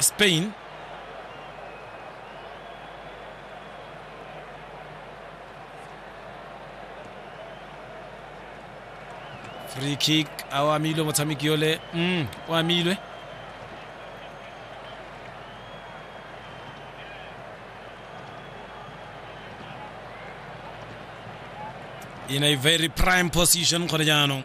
Spain free kick a o amilwe motshameki yole mm, o amilwe in a very prime position gone jaanong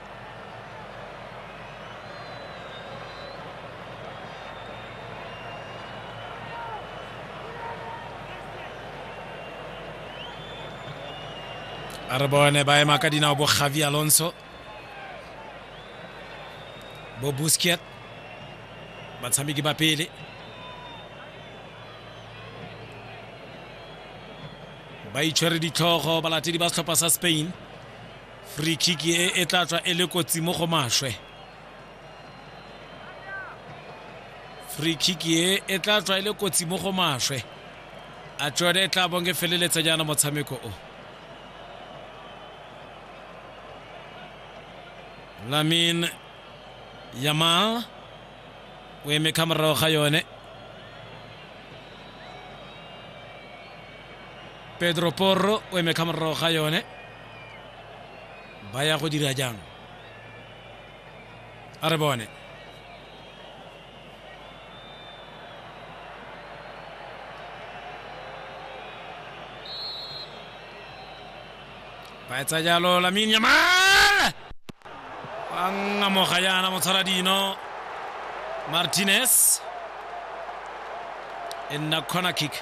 a re bone ba ema ka dinao bo javi alonso bo busket batshameki ba pele ba itshwere ditlhogo balatedi ba setlhopha sa spain free kick e e tla tswa e le kotsi mo go maswe free kick e e tla tswa e le kotsi mo go maswe a tsone e tla bong e feleletsa jaana motshameko o lamin yamal o eme ka morago ga yone pedro porro o eme ka morago ga yone ba ya go dira jang a re bone ba etsa jalo lamin yamal ba ngamoga yana motshwara dino martinez e nna corner kick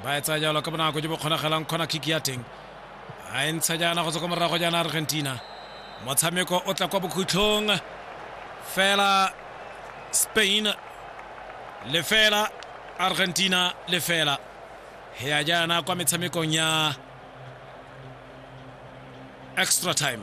ba e tsaya jalo ka bonako jo bo kgonagalang kgona kick ya teng a e ntsha jaana go tswa kwa morago jaana argentina motshameko o tla kwa bokhutlhong fela spain lefela argentina lefela ya jaana kwa metshamekong ya Extra time.